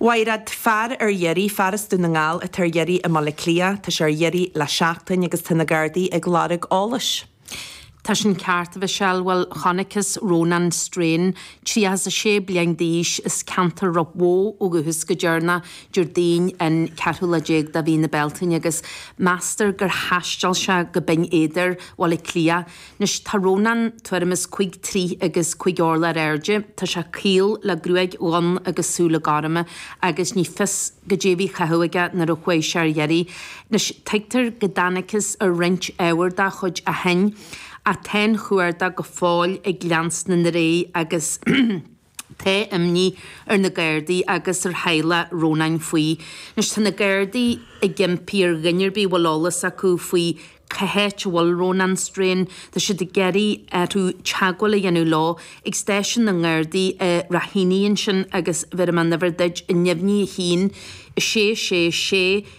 Mhairéad, fear ar iarraidh, fear as Dún na nGall atá ar iarraidh i mBaile Átha Cliath, tá sé ar iarraidh le seachtain agus tá na Gardaí ag lorg eolais. Tá sin ceart, a Mhichelle. Bhuel, chonacthas Rónán Strain, tríocha is a sé bliain d'aois, as ceantar Ráth Bhoth ó dhúchas go deireanach Déardaoin an ceathrú lá déag de mhí na Bealtaine agus meastar gur thaisteal sé go Binn Éadair, Bhaile Átha Cliath, Anois tá Rónán tuairim is cúig troithe agus cúig orlach ar airde, tá sé caol le gruaig dhonn agus súile gorma agus ní fios goidé a bhí á chaitheamh aige nuair a chuaigh sé ar iarraidh. Anois tuigtear go dtángthas ar roinnt ábhar dá chuid ó shoin ach tá an cuardach go fóill ag leanstan ar aghaidh agus Tá imní ar na Gardaí agus ar theaghlach Rónáin faoi. Anois tá na Gardaí ag impí ar dhuine ar bith a bhfuil eolas acu faoi cá háit a bhfuil Rónán Strain, tá siad ag iarraidh orthu teagmháil a dhéanamh leo ag stáisiún na nGardaí i Raheny ansin agus bhéarfaidh mé an uimhir duit neamhní 1 666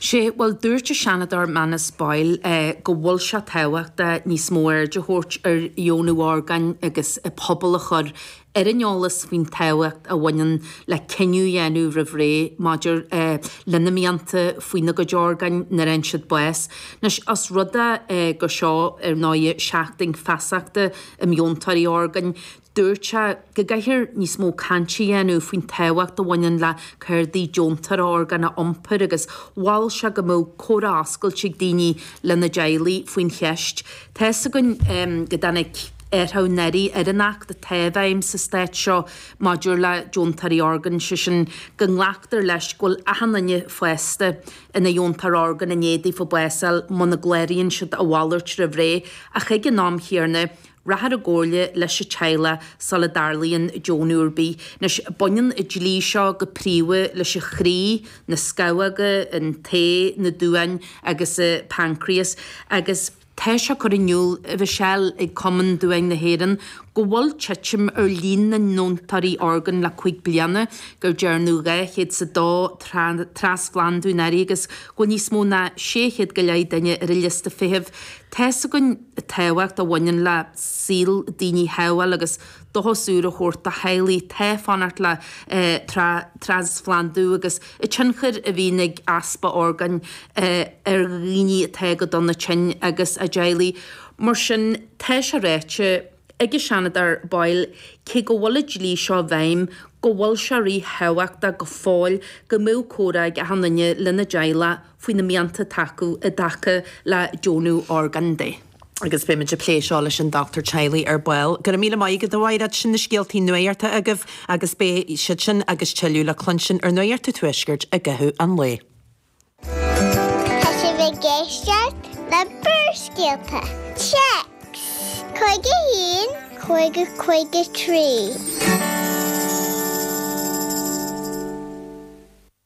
Sé, bhuel, dúirt an Seanadóir Manus Boyle go bhfuil sé tábhachtach níos mó aird a thabhairt ar dheonú orgáin agus an pobal a chur ar an eolas faoin tábhacht a bhaineann le cinneadh a dhéanamh roimh ré maidir lena mianta faoina gcuid orgáin nuair a fhaigheann siad bás. Anois, os rud é gur seo, ar ndóigh, Seachtain Feasachta um Dheontóirí Orgáin, Dúirt sé go gcaithfear níos mó cainte a dhéanamh faoin tábhacht a bhaineann le cártaí deontóra orgán a iompar agus mhol sé go mbeadh comhrá oscailte ag daoine lena dteaghlaigh faoin cheist. Tá fhios againn go dtáinig athrú anuraidh ar an Acht atá i bhfeidhm sa Stát seo maidir le deontóirí orgán, sé sin go nglactar leis go bhfuil achan duine fásta ina dheontóir orgán i ndiaidh daofa bás a fháil muna gcláraíonn siad a mhalairt roimh ré ach ag an am chéarna Rachfar i gcomhairle leis an teaghlach sula dtarlaíonn deonú ar bith. Anois, baineann an dlí seo go príomha leis an chroí, na scamhóga, an t-ae, na duáin agus an paincréas, agus. Tá sé curtha in iúl a Mhichelle ag Cumann Duáin na hÉireann go bhfuil titim ar líon na ndeontóirí orgán le cúig bliana, gur dearnadh 202 trasphlandú anuraidh agus go bhfuil níos mó ná 600 go leith duine ar an liosta feithimh. Tá's againn. tábhacht a bhaineann le saol daoine a shábháil agus dóchas úr a thabhairt do theaghlaigh atá ag fanacht le trasphlandú agus an tionchar a bhíonn ag easpa orgáin ar dhaoine atá go dona tinn agus a dteaghlaigh. Mar sin, tá sé ráite ag an Seanadóir Boyle cé go bhfuil an dlí seo i bhfeidhm go bhfuil sé ríthábhachtach go fóill go mbeadh comhrá ag achan duine lena dteaghlach, faoi na mianta atá acu i dtaca le deonú orgán de agus beimid ag plé seo leis an dochtúir teaghlaigh ar ball. Go raibh míle maith agat a Mháiread, sin na scéaltaí nuachta agaibh agus beidh siad sin agus tuilleadh le cluinstin ar Nuacht an Tuaiscirt i gcaitheamh an lae. Tá sibh ag éisteacht le Barrscéalta, Téacs, 51, 50, 53.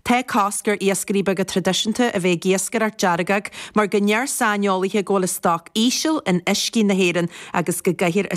Tá cosc ar iascairí beaga traidisiúnta a bheith ag iascaireacht deargóg mar go ndeir saineolaithe go bhfuil an stoc íseal in uiscí na hÉireann agus go gcaithfear a.